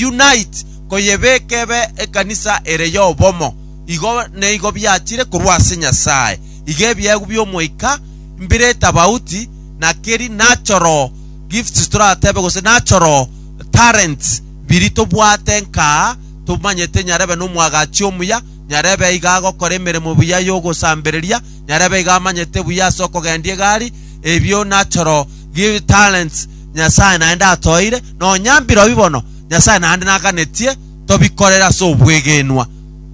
unite, koyebeka ebe ekanisa ere y'obomo. Igo neigo biachire korwa ase Nyasae. Iga ebiegwa bi'Omoika mbire etabauti na keri natural gifts toratebe gose natural talents biri tobwate nkaa tomanyete nyarebe nomwagachi omuya, nyarebe iga agokora emeremo buya y'ogosambereria, nyarebe iga amanyete buya ase okogendia egari, ebio natural talents. Nyasae naende atoeire, na onya mbirobi bono Nyasae naende naganetie tobikorere ase obwegenwa.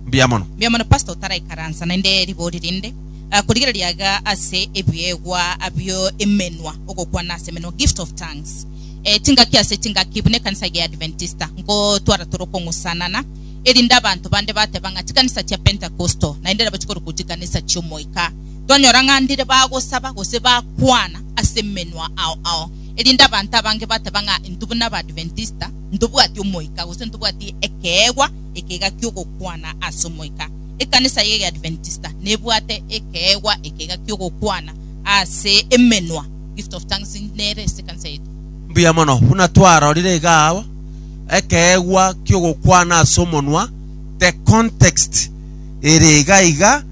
Mbuya mono. Mbuya mono pastor otaraikaransa naende ribori rinde ah, korigereria iga ase ebiegwa bio emenwa ogokwana ase emenwa gift of tongues eh, chingaki ase chingaki buna ekanisa ege ya Adventista nkotwara tore okong'usanana erinde abanto bande bateba ng'a chikanisa chia pentecostal naende nabo chikoruku chikanisa chiomoika Tonyora ng'a ndire bagosaba gose bakwana ase emenwa ao ao, erinde abanto abange bateba ng'a intwe buna Abaadventista ntobwati Omoika gose ntobwati ekeegwa ekega ki'ogokwana ase Omoika. Ekanisa y'Egeadventista nebwate ekeegwa ekega ki'ogokwana ase emenwa. Gift of Tongues nere ase ekanisa yaito. Mbuya mono. Buna twarorire iga abwo, ekeegwa ki'ogokwana ase omonwa, the context ere iga iga,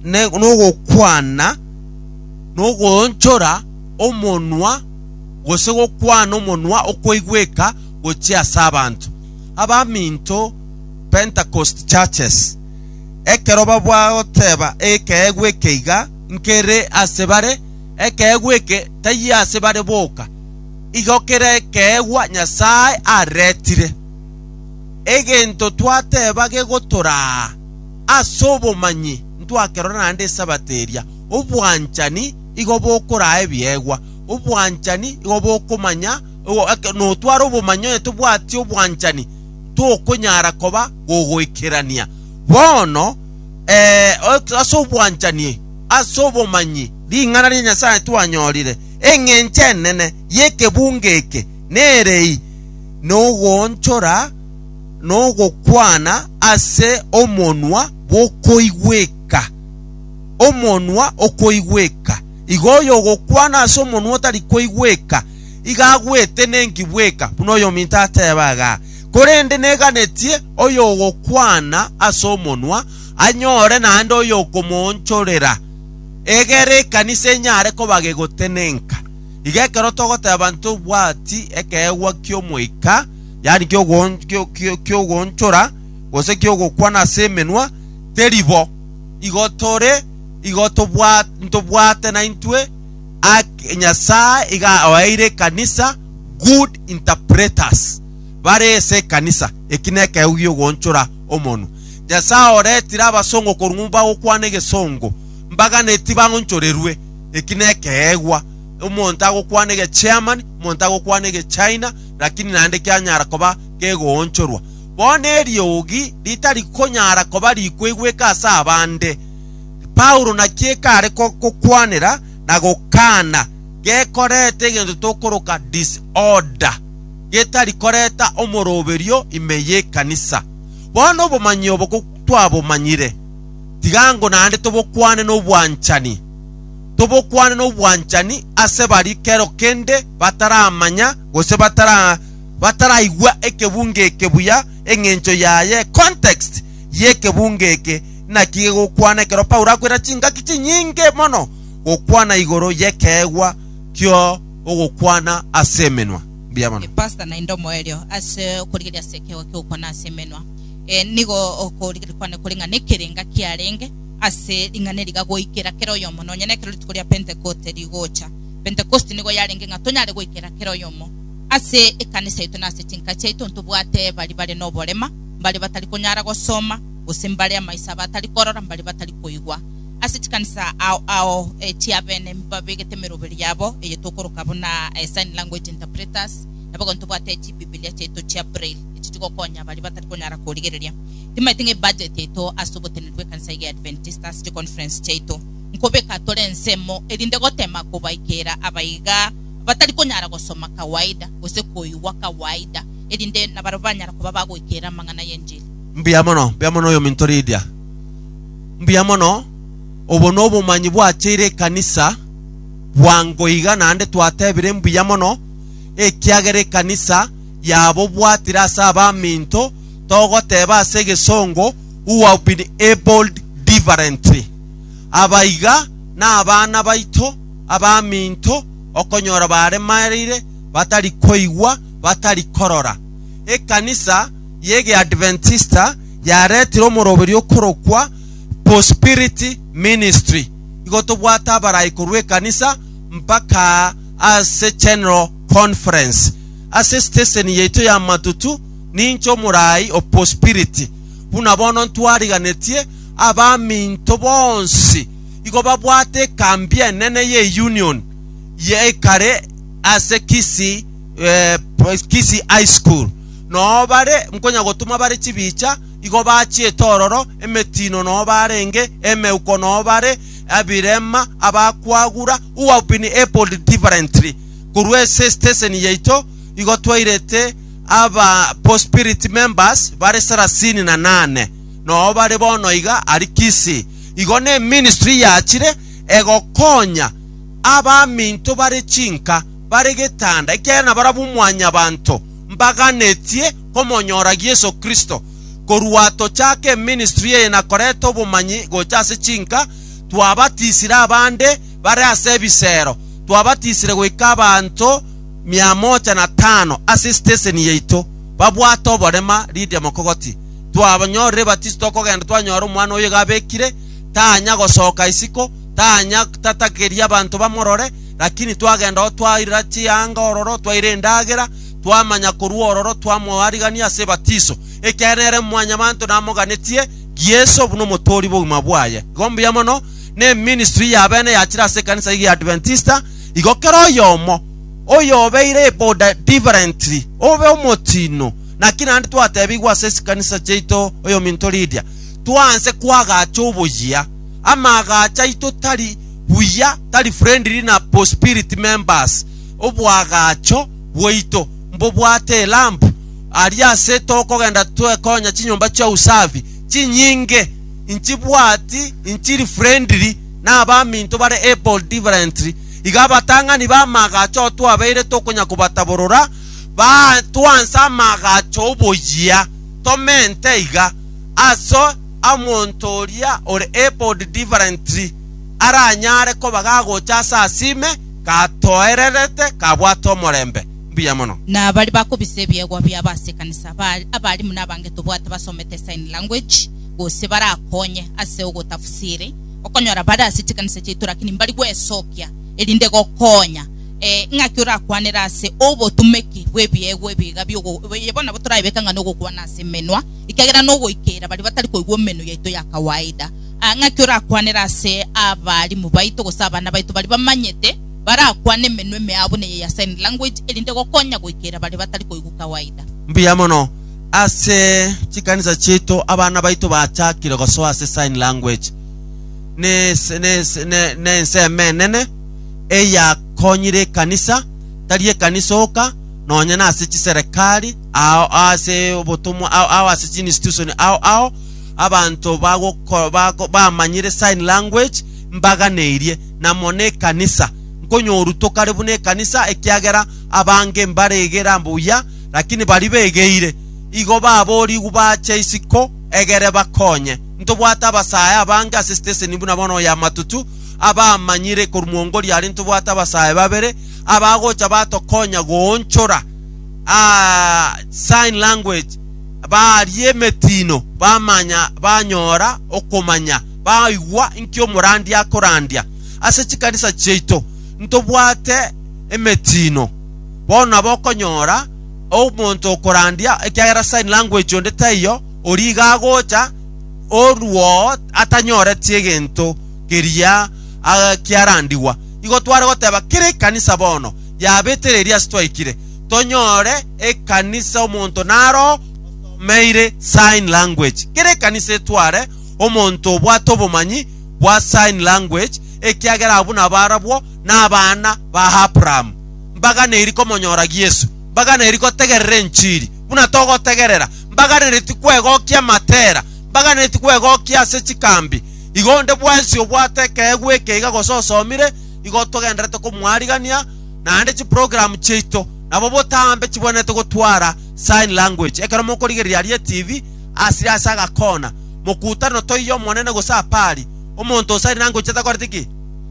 n'ogokwana, nogoonchora omonwa, gose gokwana omonwa okoigweka gochia ase abanto. Abaminto, Pentecost Churches, ekero bagoteba ekeegwa ekeiga nkere ase bare, ekeegwa eke taiyo ase bare boka, igo kera ekeegwa Nyasae aretire. Egento twateba gegotoraa. as'obomanyi ntwakerora naende esabato eria, obwanchani igo bokoraa ebiegwa, obwanchani igo bokomanya ekero notware obomanyi onye tobwati obwanchani tokonyara koba gogoikerania. Bono, ee, as'obwanchani as'obomanyi ring'ana ria Nyasaye twanyorire, engencho enene y'ekebunga eke nere eye, nogoonchora, nogokwana ase omonwa bw'okoigweka. Omonwa okoigweka, igo oyogokwana ase omonwa otari koigweka, iga agwete nenki bweka, buna oyominto ateeba iga. Korende neganetie oyogokwana ase omonwa anyore naende oyokomoonchorera, egere ekanisa enyare koba gegotenenka. Iga ekero togoteeba ntobwati ekeegwa ki'Omoika, yaani ki'ogoon- kio- kio- ki'ogoonchora, gose ki'ogokwana ase emenwa, teri bo. Igo tore, igo tobwa- ntobwate naintwe ake Nyasae iga oeire ekanisa good interpreters, bare ase ekanisa. Eki nekegego gi'ogoonchora omonwa. Nyasae oretire abasongo korwa ng'umba bagokwana egesongo, mbaganeti baonchorerwe. Eki nekegegwa. Omonto agokwana egeCherman, omonto agokwana egeChina, lakini naende kianyara koba kegoonchorwa. Bono eriogi ritari konyara koba rikoigweka ase abande, Paulo naki ekare gokwanera na gokaana gekoreta egento tokoroka disorder, getari koreta omoroberio ime y'ekanisa. Bono obomanyi obo twabomanyire, tiga ngo naende tobokwane nobwanchani. tobokwane nobwanchani ase baria kero kende bataramanya gose batara bataraigwa ekebunga eke buya engencho yaye context yekebunga eke naki gegokwana ekero Paulo akwera chingaki chinyinge mono gokwana igoro yekeegwa kio ogokwana ase emenwa mbuya mono. Pastor naende omoerio ase okorigereria ase ekeegwa ki'ogokwana ase emenwa. Eh, nigo okorigereria kwane kore ng'a nekerenga kiarenge. ase ring'ana eri iga goikera kera oyomo, nonya nekero rituko ria Pentekoste rigocha. Pentekoste nigo yarenge ng'a tonyare goikera kera oyomo ase ekanisa yaito na ase chinka chiaito, ntobwate baria bare noborema, mbaria batari konyara gosoma, gose mbaria amaiso abo atari korora, mbaria batari koigwa. Ase chikanisa ao ao chi'abene mbabegete emeroberi yabo, eye tokoroka buna sign language interpreters, nabo ekero ntobwate chibibilia chiaito chia Braille, echi chigokonya baria batari konyara korigereria. Timaeti ng'a ebudget yaito ase ogotenena bw'ekanisa eye ya Adventista ase chiconference chiaito nkobeka tore ensemo erinde gotema kobaikera abaiga batari konyara gosoma kawaida gose koigwa kawaida erinde nabarabwo banyara koba bagoikera amang'ana y'enchili. Mbuya mono, mbuya mono oyominto Lydia. Mbuya mono. Obo nobomanyi bwacheire ekanisa bwango iga naende twatebire mbuya mono ekiagera ekanisa yabobwatire ase abaminto togoteba ase egesongo who have been abled differently. Aba iga nabana baito abaminto okonyora baremereire, batari koigwa, batari korora. Ekanisa y'Egeadventista yaretire omoroberio okorokwa Prosperity Ministry. Igo tobwate abarai korwa ekanisa mpaka ase General Conference. Ase steseni yaito y'amatutu, Ninche omoraai o bosibiriti, buna bono ntwariganetie abaminto bonsi igo babwate ekambi enene y'Eunion ye ekare ase Kisii Kisii High School. Noo bare nkonyagotoma bare chibicha, igo bachiete ororo, emetiino noo barenge, emeuko noo bare, ebirema, abakwagura who have been abled differently. Korwa ase esiteseni yaito igo twairete Aba pospirit members bare sarasini na nane nobo bare bono iga aria Kisii. Igo neministry yachire egokonya abaminto bare chinka bare getanda ekiagera nabarabwo mwanyabanto mbaganetie komonyoragia Yeso Kristo. Korwa tochake eministry eye na koreta obomanyi gocha ase chinka, twabatisire abande bare ase ebisero, twabatisire goika abanto mia moja na tano ase esiteseni yaito babwate oborema Lidia Mokogoti. Twabanyorire ebatiso tokogenda twanyora omwana oyo iga abekire, tanya gosoka isiko, tanya tatakeria abanto bamorore, lakini twagenda oo twaira chianga ororo, twaira endagera, twamanya korwa ororo twamoarigania ase ebatiso, ekiagera nere mwanyabanto namoganetie Yeso buna omotoori bw'obogima bwaye. Igo mbuya mono, ne ministry y'abene yachire ase ekanisa eye y'Adventista, Igo kera oyomo oyobeire eboda differently obe omotiino. Naki naende twatebigwe ase chikanisa chiaito oyominto Lydia, twanse kwagacha oboyia. Amaagacho aito tari buya, tari friendly na bospirit members. Oboagacho bwaito mbobwate elamp aria ase tokogenda twekonya chinyomba chia usafi chinyinge, inchibwati inchiri friendly. na abaminto bare able differently, iga abatang'ani b'amaagacho oo twabeire tokonya kobataborora baa twanse amaagacho oboyia tomente iga, aso amonto oria ore able differently aranyare koba gagocha ase asime gatoererete kabwate omorembe. Mbuya mono. Na baria bakobisa ebiegwa biabo ase ekanisa, ba abarimu na abange tobwate basomete sign language, gose barakonye ase ogotafsiri, okonyora bare ase chikanisa chiaito lakini mbari gwesokia erinde gokonya eh, ng'aki orakwanere ase obotumeki bw'ebiegwa ebiga biogo eye bono nabo torabeka ng'a nogokwana ase emenwa ekiagera nogoikeira baria batari koigwa emenwa yaito ya kawaida Ah, ng'aki orakwanere ase abarimu baito gose abana baito baria bamanyete barakwane emenwa emea buna eye ya sign language erinde gokonya goikeira baria batari koigwa kawaida. Mbuya mono. ase chikanisa chiaito abana baito bachakire gosoa ase sign language na ese- na ese- na- na ensemo enene eyakonyire ekanisa tari ekanisa oka nonye na ase chiserekari ao ase obotomwa ao ao ase chiinstitution ao ao abanto bagoko- bako- bamanyire sign language mbaganeirie na mono ekanisa nkonyorwa tokare buna ekanisa ekiagera abange mbaregera mbuya Lakini baria begeire igo baboorigwe bache isiko egere bakonye. Ntobwate abasae abange ase siteseni buna bono oyo amatutu abamanyire korwa mwongori aria ntobwate abasae babere abagocha batokonya goonchora aa sign language baaria emetiino bamanya banyora okomanya baigwa inki omorandia akorandia. Ase chikanisa chiaito ntobwate emetiino. Bono nabo okonyora omonto okorandia, ekiagera sign language onde taiyo, oria iga agocha, oruwoo atanyoreti egento keria ah, kiarandigwa. Igo tware goteba kera ekanisa bono yabetera eria ase twaikire, tonyore ekanisa omonto naro osomeire sign language. Kera ekanisa etware omonto obwate obomanyi bwa sign language, ekiagera abwo nabo arabwo na abana ba Abrahamu, mbaganeiri komonyora Yesu, mbaganeiri gotegerera enchiri, buna togotegerera, mbaganereti kwegokia amatera, mbaganereti kwegokia ase chikambi. Igo onde bwensi obwate ekeegwa ekeiga gose osomire, igo togenderete komwarigania, naende chiprogramu chiaito nabo botambe chibwenerete gotwara sign language. Ekero mokorigereria aria etibi, asire ase agakona, mokutano toiyo Omonene gose apari, omonto ose aria nangochie takoreti ki?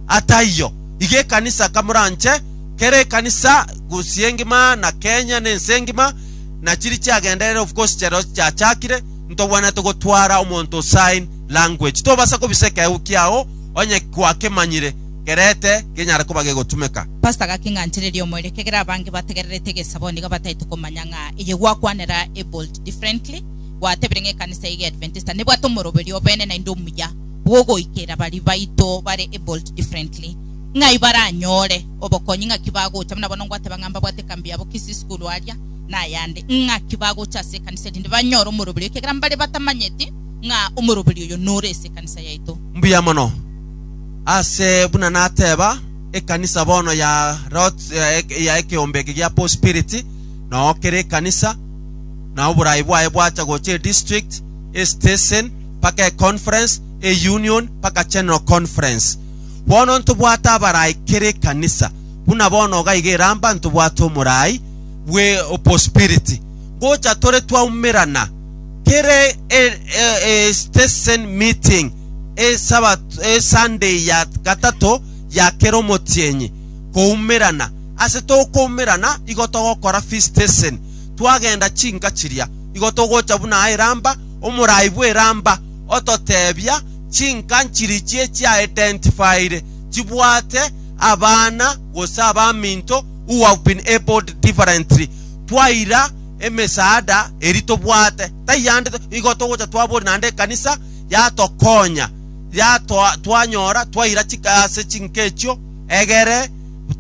Ataiyo, iga ekanisa kamoranche, kera ekanisa gusii engima na Kenya na ense engima, na chiri chiagenderere of course chero chiachakire, ntogwenerete gotwara omonto o sign language. Tobasa kobisa ekeegwa kiao onye gwakemanyire kerete genyare koba gegotumeka. Pastor gaking'anchereria omoerio kegera abange bategererete egesabo nigo bataete komanya ng'a eye gwakwanera abled differently gwatebire ng'a ekanisa eye egeadventista nebwate omoroberio obene naende omuya. bw'ogoikera baria baito bare ebuilt differently, ng'ai baranyore obokonyi, ng'aki bagocha, buna bono ngwateba ng'a mbabwate ekambi yabo Kisii School aria, na ayande, ng'aki bagocha ase ekanisa erinde banyore omoroberio, ekiagera mbare batamanyeti ng'a omoroberio oyo nore ase ekanisa yaito. Mbuya mono. Ase buna nateba, ekanisa bono ya lot ya ekeombe eke gia Paul Spirit, noo kere ekanisa, na oborai bwaye bwacha gocha edistrict, estesen, mpaka econference, eunion, mpaka general conference. Bono ntobwate abarai kera ekanisa, buna bono iga iga eramba ntobwate omorai bwe obospiriti. Gocha tore twaumerana kera e- e- e- e- station meeting esabato esunday ya gatato ya kera omotienyi koumerana. Ase tokoumerana igo togokora feast station twagenda chinka chiria igo togocha buna aye eramba omorai bw'eramba ototebia chinka nchiri chie chiaidentified chibwate abana gose abaminto who have been abled differently. Twaira emesaada eri tobwate taiande igo togocha twabori naende ekanisa yatokonya yatoa twanyora twaira chika ase chinka echio egere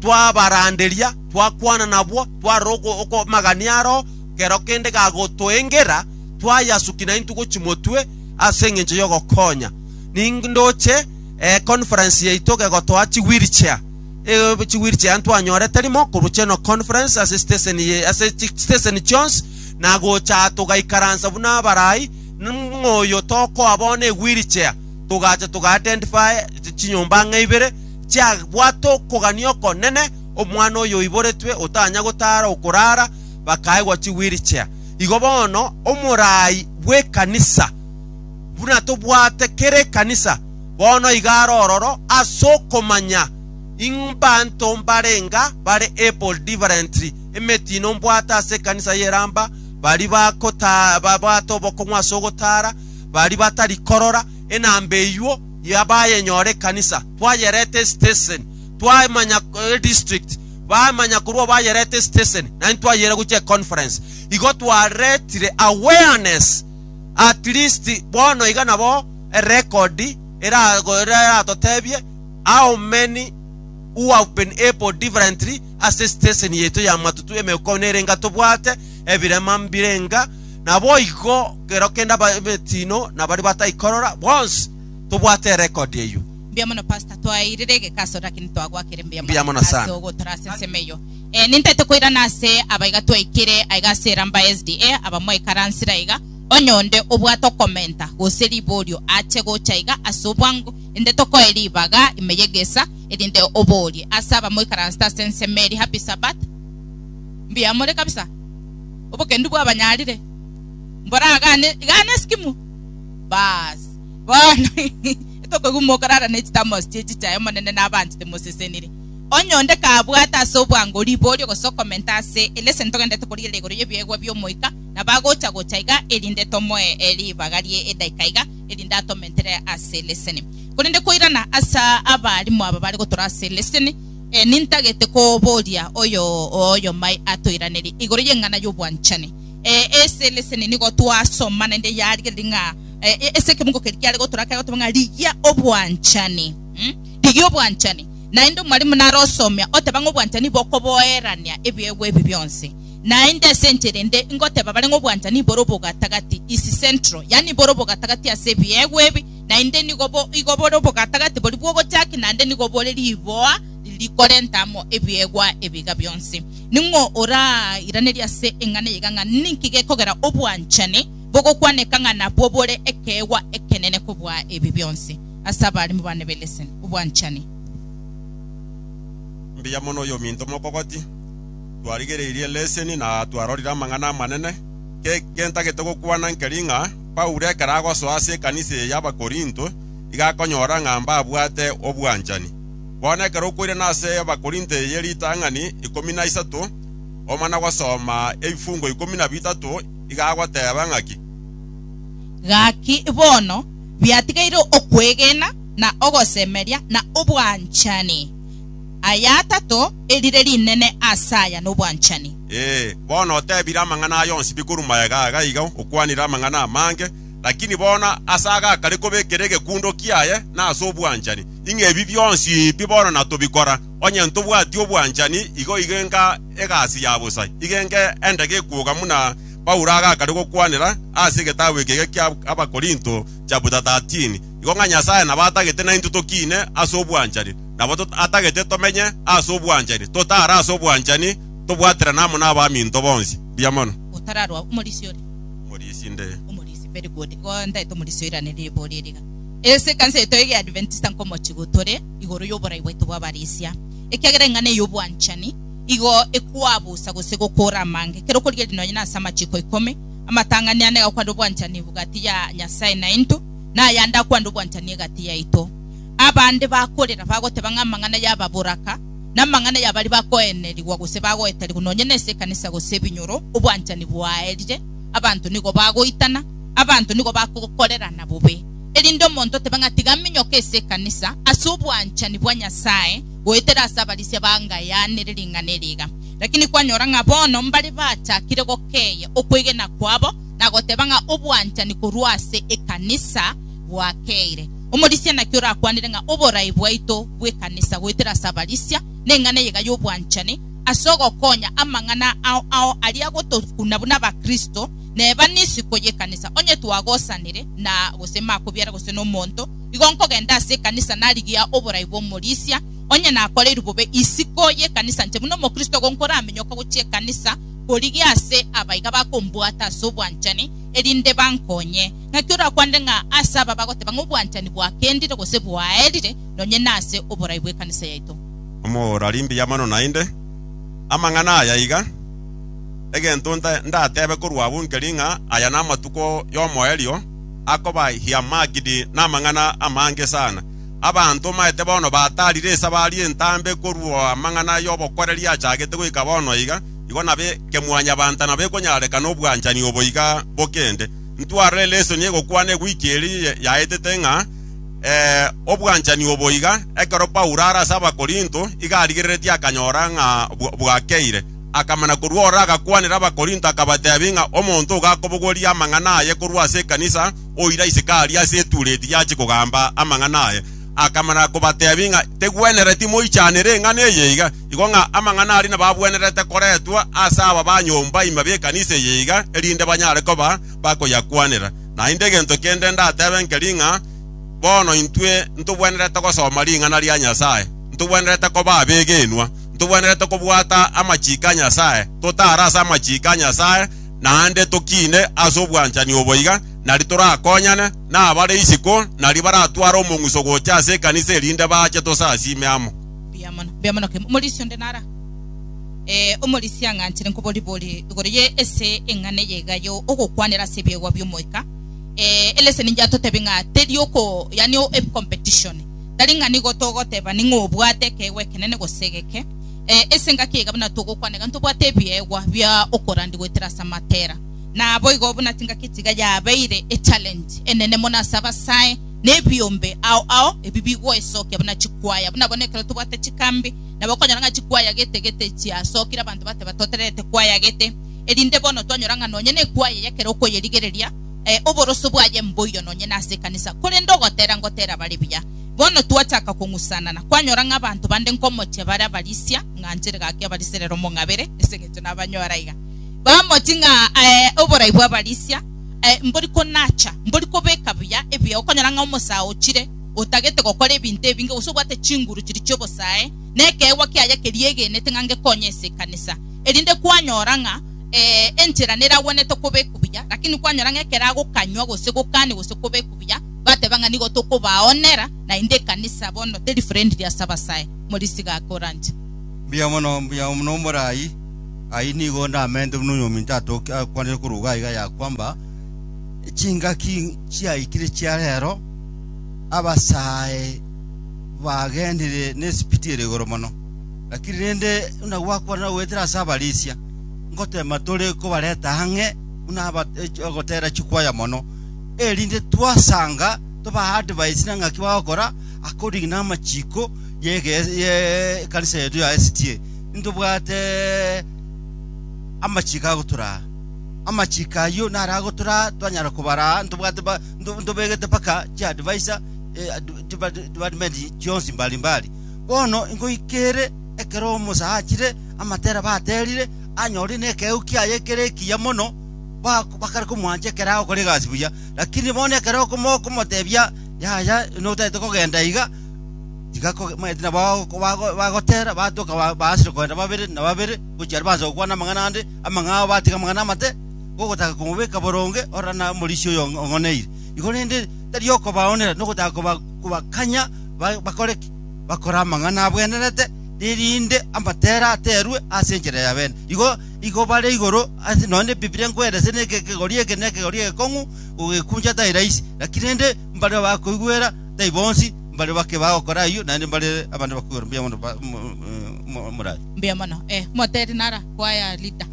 twabaranderia twakwana nabwo twarora oko- okomagania aro kero kende gagotoengera twayasuki naintwe gochia motwe ase engencho y'ogokonya. Nindoche eh, conference yaito gegotoa chi wheelchair. Eh, chi wheelchair ntwanyorete rimo korwa Cheno conference ase station ye ase chi station chionsi na gocha aa togaikaransa buna abarai ng'oyo tokoa bono e wheelchair togacha toga identify chi- chinyomba ang'e ibere chiabwate okogania okonene omwana oyo oiboretwe otanya gotara okorara bakaegwa chi wheelchair igo bono omorai bw'ekanisa, buna tobwate kera ekanisa, bono iga are ororo ase okomanya ing' mbanto mbarenga bare able differently. Emetino mbwate ase ekanisa y'eramba, bari bakota- babwate obokong'u ase ogotara, bari batari korora, enamba eyuo ya bayenyora ekanisa, twayereta esitesen, twamanya eh, district, Bamanya korwa bayerete esiteseni na intwe ayere gochia econference, igo twaretire awareness at least bono iga nabo erecord erago eratotebie how many who have been able differently ase esiteseni yaito ya matutu emeuko nere enga tobwate ebirema mbire enga naboigo kero kende aba emetino na baria bataikorora bonsi tobwate erecord eyio. Mbuya mono pastor twaeirire egeka ase lakini twagwakire mbuya Mbuya mono mono sana. ase ogotora ase ensemo eyio Eh, nintaete koirana ase abaiga twaikire aiga ase eramba SDA abamwaikaransire aiga onye onde obwate okomenta gose riborio ache gocha iga ase obwango inde tokoe ribaga ime yegesa erinde oborie ase abamoikaransete ase ensemo eri happy sabbath Mbuya more kabisa obokendu bwabanyarire mboragane igane esikimu baas bono Etogokigwa mokarara ne chitamosi chie chichae Omonene nabaanchete mosesenire. Onye onde kabwate ase obwango riborio gose okomenta ase ere ase ntogenderete korigereria igoro y'ebiegwa bi'Omoika, nabo agocha gocha iga erinde tomoe ribaga rie edaika iga, erinde atomentere ase leseni. Korende koirana ase abalimu aba bare gotora ase leseni, nintagete koboria oyo oyomai atoiranerie igoro y'eng'ana y'obwanchani. Eh, ase leseni nigo twasoma naende yarigereria ng'a eh, eh, ase ekemungo keria kiare gotora kare goteba ng'a rigia obwanchani Mm? rigia obwanchani naende omwalimu nare osomia oteba ng'a obwanchani bokoboerania ebiegwa ebi bionsi naende ase enchera ende ngoteba bare ng'a obwanchani bore obogatagati isi central yaani bore obogatagati ase ebiegwa ebi naende nigo bo- igo bore obogatagati bori bwogochaki naende nigo bore riboa rikorenta amo ebiegwa ebiga bionsi Ning'o orairanerie ase eng'ana eyio iga ng'a ninki gekogera obwanchani bogokwaneka ng'a nabwo bore ekeegwa ekenene kobua ebi bionsi? Ase abarimo bane be Listen! Obwanchani. Mbuya mono oyominto mokogoti. Twarigereirie leseni na twarorire amang'ana amanene. Ki gentagete gokwana nkeri ng'a Paulo ekero agosoa ase ekanisa eye y'Abakorinto, iga akonyora ng'a mbabwate obwanchani. Bono ekero okoirana ase Abakorinto eye ritang'ani ikomi na isato, omana gosoma ebifungo ikomi na bitato, iga agoteba ng'aki? Gaki bono biatigeire okwegena, na ogosemeria, na obwanchani, aya atato, erire rinene ase aya nobwanchani. Ee, bono otebire amang'ana aya onsi bikorwa magega iga iga, okwanire amang'ana amange, lakini bono ase agakare koba ekere egekundokia aye nase obwanchani. Ing'a ebi bionsi pi bono natobikora, onye ntobwati obwanchani, igo igenka egasi ya bosa, igenka enda gekwoga muna Paulo agakare gokwanera ase egetabu eke ege kia Abakorinto, chapter 13, igo ng'a Nyasae nabo atagete naintwe tokiine ase obwanchani, nabo atagete tomenye ase obwanchani, totare ase obwanchani, tobwaterane amo n'abaminto bonsi. Mbuya mono. Gotararwa omorisia ore. Omorisia inde. Omorisia very good. Igo ntaete omorisia oirane riboria eri iga. Ase ekanisa yaito y'Ekeadventista nkomochigo tore igoro y'oborai bwaito bw'abarisia, ekiagera eng'ana eye y'obwanchani igo ekwabusa gose gokoora amange. Ekero okorigereria nonya nase amachiko ikomi amatang'ani ane agakwana obwanchani egati ya Nyasae nainto, na ayande akwane obwanchani egati yaito, abande bakorera bagoteba ng'a amang'ana y'ababoraka na amang'ana ya baria bakoenerigwa gose bagoeterigwa nonya nase ekanisa gose ebinyoro obwanchani bwaerire, abanto nigo bagoitana. abanto nigo bakokorerana bobe, erinde omonto otebe ng'a tiga minyoke ase ekanisa ase obwanchani bwa Nyasae goetera ase abarisia bangayanire ring'ana eri iga. Lakini kwanyora ng'a bono mbare bachakire gokeeya okwegena kwabo na goteba ng'a obwanchani korwa ase ekanisa bwakeire. Omorisia naki orakwanire ng'a oborae bwaito bw'ekanisa goetera ase abarisia neng'ana eyeiga y'obwanchani ase ogokonya amang'ana ao ao aria agotokuna buna Abakristo Neba nisiko y'ekanisa, onye twagosanire, na gose makobiara gose nomonto, igo nkogenda ase ekanisa narigia oborai bw'omorisia. Onye nakoreirwe bobe, isiko y'ekanisa nche buna omokristo ogo nkoramenyoka gochia ekanisa korigia ase abaiga bakombwata ase obwanchani, erinde bankonye. Naki orakwanere ng'a ase aba bagoteba ng'a obwanchani bwakendire gose bwaerire, nonye nase oborai bw'ekanisa yaito. Omorari mbiamano naende amang'ana aya iga. egento ndatebe korwa abwo nkeri ng'a aya namatuko y'omoerio akoba Hiamagidi namang'ana amange sana. Abanto omanyete bono bataarire esabari entambe korwa amang'ana y'obokoreri achagete goika bono iga, igo nabe kemwanyabanto nabo ekonyarekana obwanchani obo iga bokende. Ntwarore lesson egokwana egwiki eri yaetete ng'a Ee, obwanchani obo iga, ekero Paulo are ase Abakorinto, iga arigereretie akanyora ng'a bwakeire. Akamana korwa ororo agakwanera Abakorinto, akabateebia ng'a omonto ogakobogoria amang'ana aye korwa ase ekanisa, oira isiko aria ase etureti yache kogamba amang'ana aye. Akamana kobateebia ng'a tegwenereti moichanere eng'ana eye iga, igo ng'a amang'ana aria nabagwenerete koretwa ase aba ba nyomba ime b'ekanisa eye iga, erinde banyare koba bakoyakwanera. Naende gento kende ndatebe nkeri ng'a, bono intwe ntobwenerete gosoma ring'ana ria Nyasae, ntobwenerete koba abegenwa, ntobwenerete kobwata amachiiko a Nyasae, totare ase amachiiko a Nyasae, naende tokiine ase obwanchani obo iga, nari torakonyane, na abare isiko nari baratware omong'uso gocha ase ekanisa erinde baache tosasiime amo. Eh, omorisia ng'anchire nkoboribori igoro ye ese eng'ana eye iga yo ogokwanera ase ebiegwa bi'omoika. Eh, eleseni inche atotebi ng'a teri oko yani o- ep- competition. Tari ng'a nigo togotebani ng'a obwate ekeegwa ekenene gose egeke. Eh, ase engaki eye iga buna togokwana iga ntobwate ebiegwa bia okorandi goetera ase amatera. Naboigo buna chingaki echi iga yabeire e challenge enene mono ase abasae na ebiombe ao ao ebi bigoesokia buna chikwaya buna bono ekero tobwate chikambi Nabo okonyora ng'a chikwayagete gete chiasokire abanto bateba totererete kwayagete, erinde bono twanyora ng'a nonye nekwaya y'ekero okoyerigereria, eh, oboroso bwaye mboiyo nonye nase ekanisa. Korende ogotera ngotera bare buya. Bono twachaka kong'usanana, kwanyora ng'a abanto bande nkomochia bare abarisia, ng'anchere gaki abarisia rero mong'abere, ase engencho nabanyora iga. Bamochi ng'a, eh, oborai bw'abarisia, eh, mbori konacha, mbori kobeka buya ebiao, okonyora ng'a omosaa ochire, otagete gokora ebinto ebinge, gose obwate chinguru chiria chi'obosae, na ekeegwa kiaye keria egenete ng'a ngekonye ase ekanisa, erinde kwanyora ng'a enchera neragwenerete koba ekubuya, lakini kwanyora ng'a ekero agokanywa gose gokania gose koba ekubuya, bateba ng'a nigo tokobaonera, naende ekanisa bono teri friendly ase abasae. Morisiga ake oranche. Mbuya mono, mbuya mono omorai. Ayio nigo ndamenyete buna onye ominto atoke akwanire korwa iga iga yakwamba, Chingaki chiaikire chia rero? abasae bagenire nesipiti ere igoro mono. Lakini rende buna gwakwanire goetera ase abarisia, ngoteema tore kobareta ang'e buna aba- ech- ogotera chikwaya mono, erinde twasanga tobaa advise na ng'aki bagokora according na amachiko yege- ye ekanisa yaito ya SDA. Ntobwate amachiko agotoraa. Amachiko ayio naro agotoraa twanyara kobaraa ntobwate ba- nto- ntobegete mpaka chiadvisor eh, ad- depart- department chionsi mbali mbali bono ingoika ere ekero omosa achire amatera baterire anyore nekeu kiaye kere ekiya mono ba- bakare komwancha ekero agokora egasi buya lakini bono ekero okomo- okomotebia yaya notagete kogenda iga tiga koge- maete nabo bago- bago- bagotera batoka ba- baasire kogenda babere na babere gochia aria bansa gokwana amang'ana ande amang'ao batiga amang'ana amate gogotaka komobeka boronge ororo na omorisia oyo ong'oneire igo, rende tari okobaonera nogotaka koba- kobakanya ba- bakore ki? Bakore amang'ana abwenerete, erinde amatere aterwe ase enchera ya bene. Igo, igo bare igoro ase nonya na Ebibilia nkoera ase neke ekegori eke na ekegori egekong'u, gogekuncha tai rahisi, lakini rende mbare abakoigwera tai bonsi mbare bake bagokora ayio, naende mbare abande bakoigwera mbuya mono ba- mo- mo- mo- moraria. Mbuya mono, eh. Moteri nara kwaya lita.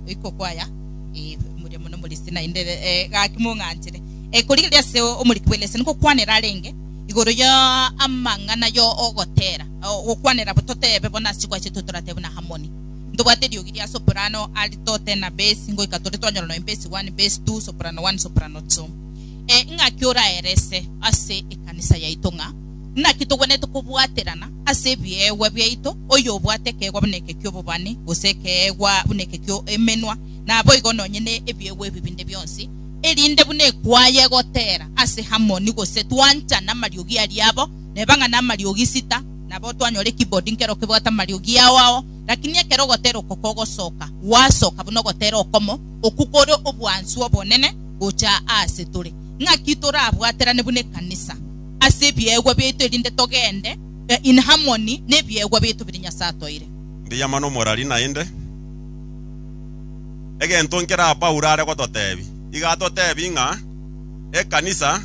oiko kwaya eh, muria muno morisi naende eh, gaki mong'anchire eh, korigereria ase omoriki bw'elesa nikokwanera arenge igoro ya amang'ana ya ogotera o- gokwanera bototebe bono ase chikwache tu toratebe na Harmony ntobwate eriogi ria soprano alitote na base ngoika tore twanyora nonya base one base two soprano one soprano two eh, ng'aki oraerese ase ekanisa yaito ng'a Naki togwenerete kobwaterana ase ebiegwa biaito, oyobwate ekeegwa buna eke ki'obobani, gose ekeegwa buna eke ki'emenwa, naboigo nonye ne ebiegwa ebi binde bionsi, erinde buna ekwaya egotera ase Amoni gose twanchana amariogi aria abo, neba ng'a namariogi sita, nabo twanyora ekibodi nkero kebwate amariogi ao ao. Lakini ekero ogotera oko kogosoka, gwasoka buna ogotera okomo, okwo kore obwansu obonene gocha aase tore, ng'aki torabwaterane buna ekanisa. ase ebiegwa biaito erinde togende inharmony nebiegwa biaito biria Nyasae atoire. Mbuya mono omorari naende. Egento nkera Paulo are gototebia, iga atotebia ng'a ekanisa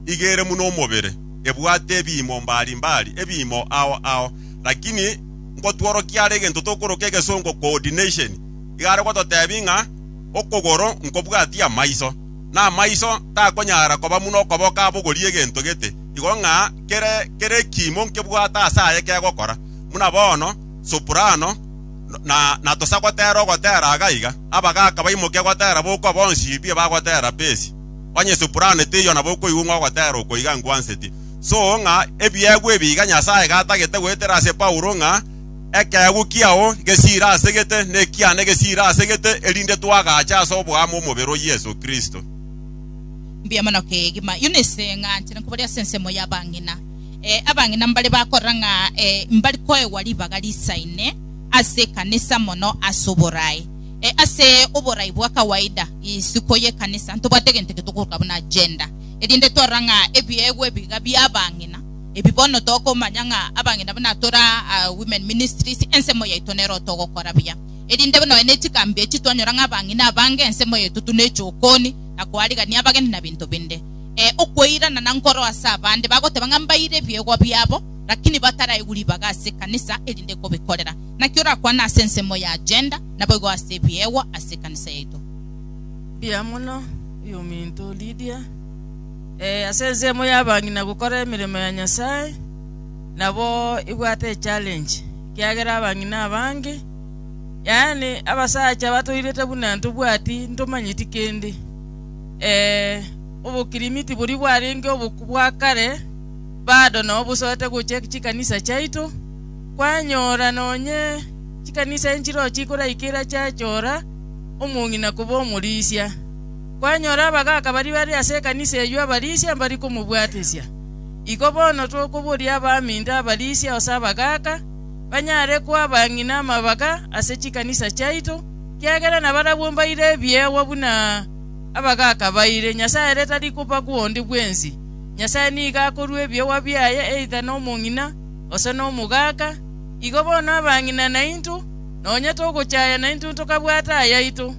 iga ere buna omobere, ebwate ebiimo mbari mbari, ebiimo ao ao. Lakini nkotworokia are egento tokoroka egesongo coordination, iga are gototebia ng'a okogoro nkobwatia amaiso. na amaiso takonyara koba buna okoboko abogorie egento gete, igo ng'a kere kere ekiimo nkebwate ase aye kegokora. Buna bono soprano na tosa gotera ogotera aga iga, abagaka baimoke gotera bokwa bonsi pi bagotera pesi, onye soprano teiyo nabo okoigwa ng'a ogotera oko iga nkwanseti. So ng'a ebiegwa ebi iga Nyasaye gatagete goetera ase Paulo ng'a Ekeegwa kiao ngesiire ase gete, na ekiane gesiire ase gete, erinde twagache ase oboamo omobere o Yeso Kristo. Mbuya mono kegima Eunice, ng'a nchire nkoboria ase ensemo y'abang'ina. Eh, abang'ina mbare bakorora ng'a eh, mbari koegwa ribaga risaine ase ekanisa mono ase oboraai. Eh, ase oboraai bwa kawaida, isiko y'ekanisa, ntobwate egento eke tokoroka buna agenda, erinde twarora ng'a ebiegwa ebiga bi'abang'ina Ebi bono tokomanya ng'a abang'ina buna tore aa Women Ministries, ensemo yaito nero togokora buya. Erinde nonya ne chikambi echi twanyora ng'a abang'ina abange ensemo yaito tuna echokoni, na koarigania abageni na binto binde. Ee, okweirana na nkoro ase abande bagoteba ng'a mbaire ebiegwa biabo, rakini bataraigwa ribaga ase ekanisa erinde kobikorera. Naki orakwane ase ensemo ya gender, naboigo ase ebiegwa ase ekanisa yaito. Mbuya mono, oyominto Lydia. Ee, ase ensemo y'abang'ina gokora emeremo ya Nyasae nabo ebwate echallenge, ekiagera abang'ina abange, yaani abasacha batoirete buna ntobwati ntomanyeti kende. Ee, obokirimiti boria bwarenge oboku bwa kare, bado nao bosoete gochia chikanisa chiaito, kwanyora nonye chikanisa enchiro chikoraikiera chiachora omong'ina koba omorisia. Kwanyora abagaaka baria bare ase ekanisa eyio abarisia mbari komobwatesia. Igo bono tokoboria abaminto abarisia ose abagaaka, banyare koa abang'ina amabaga ase chikanisa chiaito, kiagera nabarabwo mbaire ebiegwa buna abagaaka baire. Nyasae ere tari koba gwonde bwensi. Nyasae nigo akorua ebiegwa biaye either nomong'ina ose nomogaaka. Igo bono abang'ina nainto, nonya togochaya nainto ntokabwate ayaito.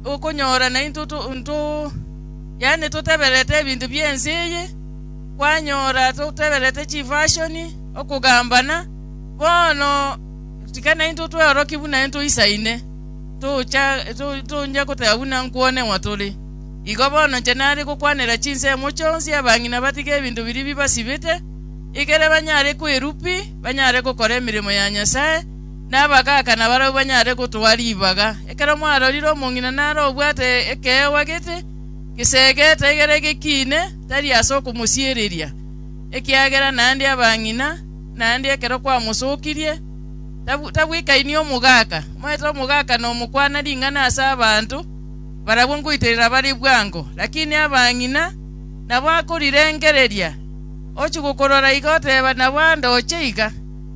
okonyora naintwe yaani totebererete ebinto bi'ense eye, kwanyora totebererete chifashoni, okogambana. Bono tika naintwe tweorokie buna ntoisaine, tocha to- toncha goteba buna nkwoneng'wa tore. Igo bono inche nare gokwanera chinsemo chionsi abang'ina batige ebinto biria bibasibete, ekere banyare kwerupia, banyare gokora emeremo ya Nyasae, Nabagaaka nabarabwo banyare gotoa ribaga. Ekero mwarorire omong'ina nare obwate ekeegwa gete, gesegete, egere gekiine, tari ase okomosiereria, ekiagera naende abang'ina, naende ekero kwamosokirie, tabwekainia omogaaka, omanyete omogaaka nomokwana ring'ana ase abanto, barabwo ngoiterera bare bwango. Lakini abang'ina nabo akorirengereria, ochia gokorora iga oteba, Nabo ande oche iga.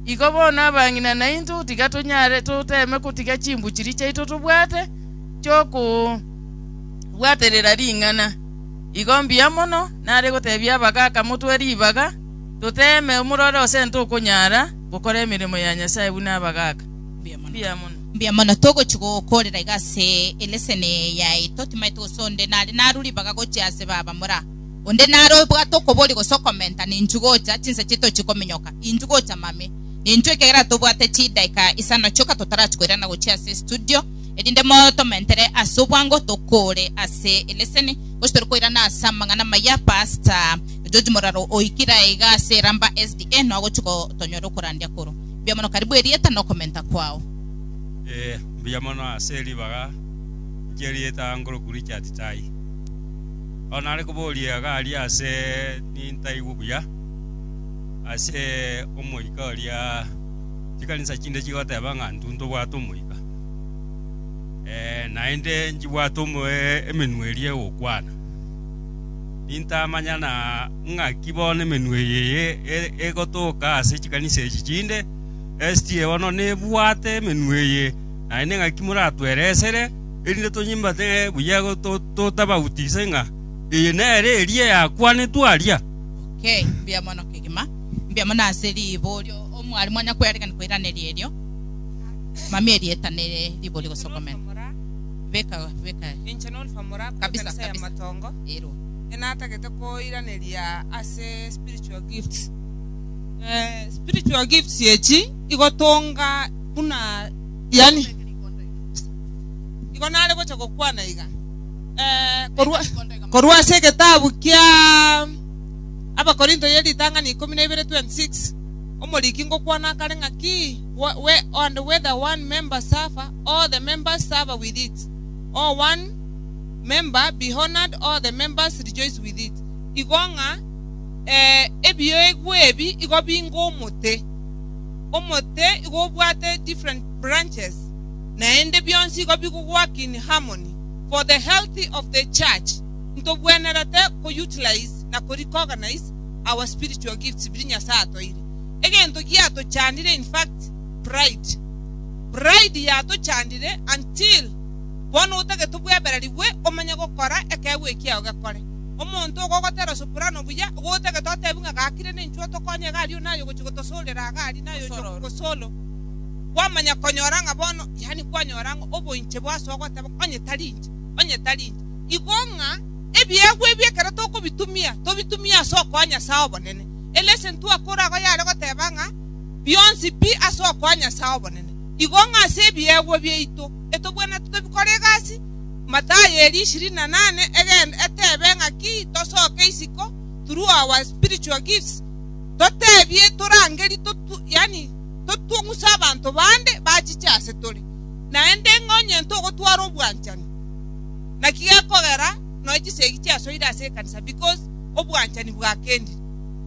Igo bono abang'ina naintwe tiga tonyare toteeme gotiga chimbuchiri chiaito tobwate chi'okobwaterera ring'ana. Igo mbuya mono nare gotebia abagaaka motwe ribaga, toteeme omorore ose ntokonyara gokora emeremo ya Nyasae buna abagaaka. Mbuya mono togochia gokoorera iga ase eleseni yaito, timaete gose onde nare narue ribaga gochia ase baba mora. Onde naro obwate okobori gose okomenta ninchu gocha chinsa chiaito chikominyoka, inchu gocha mame. Ninchu ekegera tobwate chidaika isano chioka totarachia koirana gochia ase estudio, erinde motomentere ase obwango tokore ase eleseni, gose tore koirana ase amang'ana amaya. Pastor George Moraro oikire aiga ase Iramba SDA nao ogochia gotonyora okorandia koro. Mbuya mono karibu erieta na okomenta kwao. Ee, mbuya mono ase ribaga inche erieta ngoroku Richard Tai. Oro nare koboria iga aria ase nintaigwe buya ase omoika oria chikanisa chinde chigoteba ng'a intwe ntobwate omoika. Naende nchibwate emenwa eria egokwana. Nintamanya na ng'aki bono emenwa eye eye egotoka ase chikanisa echi chinde, estie bono nebwate emenwa eye naende ng'aki moratweresere erinde tonyimbate buya totabautigise ng'a eye nere eria yakwanetwe aria. OK, mbuya mono kegima. Mbuya mono ase riborio omwalimu anya kwearekania koiraneria erio. Mami erieta nere riborio gose okomera. Beka beka Inche nolfa moraku kabisa ekanisa ya kabisa. Matongo. Ero. Inche natagete koiraneria ase spiritual gifts. Eh, spiritual gifts echi igotonga buna yaani. Igo nare gocha gokwana iga, eh, korwa korwa ase egetabu kia Abakorinto ye ritang'ani ikomi na ibere twenty six, omoriki ngokwana akare ng'aki, And whether one member suffer, all the members suffer with it, or one member be honored, all the members rejoice with it. Igo ng'a eh, ebioegwa ebi igo binga omote, omote igo obwate different branches, naende bionsi igo bigogwakin harmony for the healthy of the church. Ntobwenerete ko utilize na ko recognize our spiritual gifts biria Nyasae atoeire. Egento giatochandire in fact pride. Pride yatochandire until bono otagete obweberarigwe omenye gokora ekeegwa ekiao gekore. Omonto ogo ogotera soprano buya igo otagete otebi ng'a gakire nenchwe otokonye iga aria onaye ogochi gotosorera iga aria naye ochi okogo solo. kwamanya konyora ng'a bono, yaani kwanyora ng'a oboinche bwasoa goteba, Onye tari inche, onye tari inche. Igo ng'a ebiegwa ebi ekero tokobitumia, tobitumie ase okoa Nyasae obonene. Eleseni twakora agwo yare goteba ng'a bionsi pi ase okoa Nyasae obonene. Igo ng'a ase ebiegwa biaito etobwenerete tobikore egasi, Mathayo eri ishirini na nane egende etebe ng'a ki tosoke isiko through our spiritual gifts totebie torangerie, yaani. totong'use abanto bande bachiche ase tore, naende ng'a onye ntogotwara obwanchani, naki gekogera nonya chisegi chiasoire ase ekanisa because obwanchani bwakendire.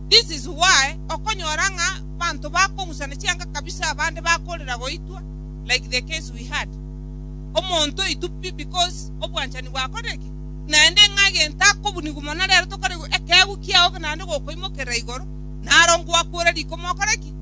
This is why okonyora ng'a abanto bakong'usana chianga kabisa abande bakorera goitwa like the case we had. Omonto oitwa pi because obwanchani bwakorire ki? Naende ng'a egento akobunigwa mono rero tokarigwa ekeegwa kiago naende gokoimokerera igoro naro ngwakure rikoma okore ki?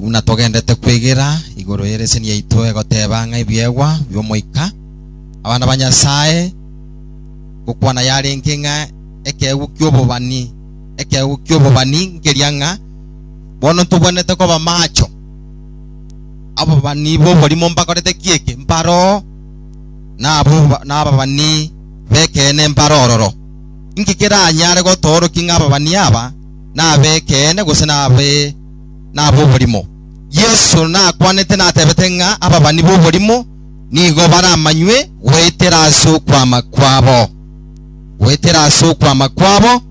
Buna togendete kwegera igoro y'ereseni yaito egoteba ng'a ebiegwa bi'Omoika, abana ba Nyasae, gokwana yarenge ng'a ekeegwa ki'obobani, ekeegwa ki'obobani nkeria ng'a bono ntobwenerete koba macho. Ababani b'oborimo mbakorete ki eke? Mbaroo, na abo na ababani b'ekeene mbare ororo. Inki keranyare gotoorokia ng'a ababani aba nab'ekeene gose nabe nab'oborimo. Yeso nakwanete natebete ng'a ababani b'oborimo nigo baramanywe goetera ase okwama kwabo. Goetera ase okwama kwabo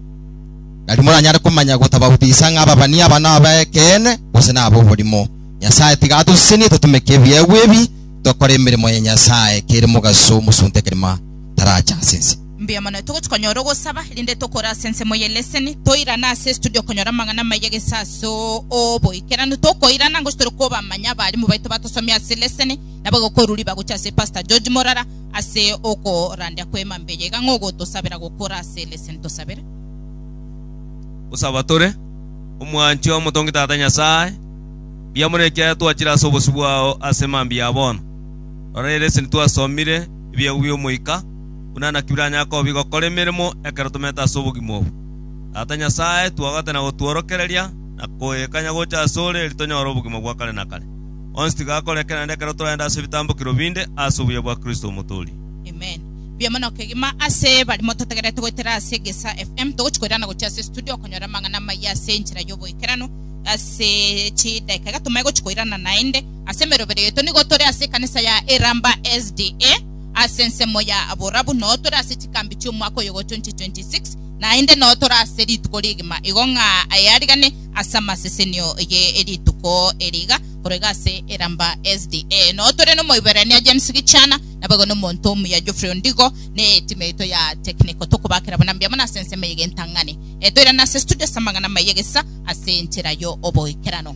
nari moranyare komanya gotabautisa ng'a ababani aba nab'ekeene gose nab'oborimo. Nyasae tiga atosesenie totumeke ebiegwa ebi tokore emeremo ya Nyasae kere mogaso omosunte kegima tarache ase ense. Mbuya mono, togochia konyora ogosaba rinde tokore ase ensemo ye leseni, toirane ase estudio konyora amang'ana amaya gese ase oboikeranu, tokoirana ngochia tore kobamanya abarimu baito batosomia ase leseni, nabo egokora riba gochia ase Pastor George Morara ase okorandia kwema mbuya iga ng'a ogotosabera gokora ase leseni tosabere. Gosaba tore, Omwanchwa omotongi Tata Nyasae, mbuya mono ekiagera twachire ase obosio bwao ase mambia ya bono. Rora eleseni twasomire, ebiegwa bi'Omoika, buna natwiranyare kobi gokora emeremo ekero tomerete ase obogima obo. Tata Nyasae, twogete na gotworokereria na koegekanya gocha asore, erio tonyore obogima bwa kare na kare. Onsi tiga akore eke naende ekero toragenda ase ebitambokero binde, ase obuya bwa Kristo Omotooria. Amen. Mbuya mono kegima ase barimo totegerete goetera ase Gesa FM. Togochi koirana gochia ase studio okonyora amang'ana amaya ase enchera y'oboikeranu. Ase chidaika iga tomaye gochi koirana naende. Ase emerobera yaito nigo tore ase ekanisa ya Iramba SDA. ase ensemo ya aborabu nao tore ase chikambi chi'omwaka oyogo 2026, naende nao tore ase rituko rigima igo ng'a aye arigane ase amasesenio ye rituko eri iga korwa iga ase Iramba SDA. Nao tore n'omoiberania James Gichana naboigo nomonto omuya Geoffrey Ondigo ne etimu yaito ya technical tokobakera buna mbuya mono ase ensemo eye y'entang'ani. Toirane ase studio ase amang'ana amaya egesa ase enchera y'oboikeranu.